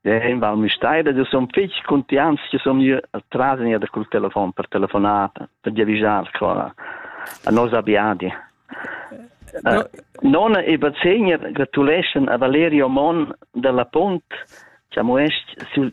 Ja, in val mi stai da son fich contians che son io tras in da col telefon per telefonata per diavisar qua a nos abiadi. No. Nona e bazegner gratuleschen a Valerio Mon dalla Punt, che amuest sul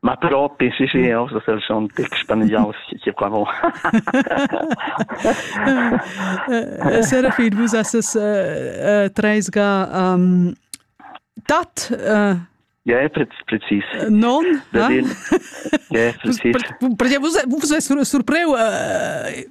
Ma propi, sì, sì, eu sun schon tic spaniaus che pravo. Serafin, vus esses uh, treisga um, tat? Uh, Ja, precis. Non? Eh? Ja, precis. Perché vus, vus surpreu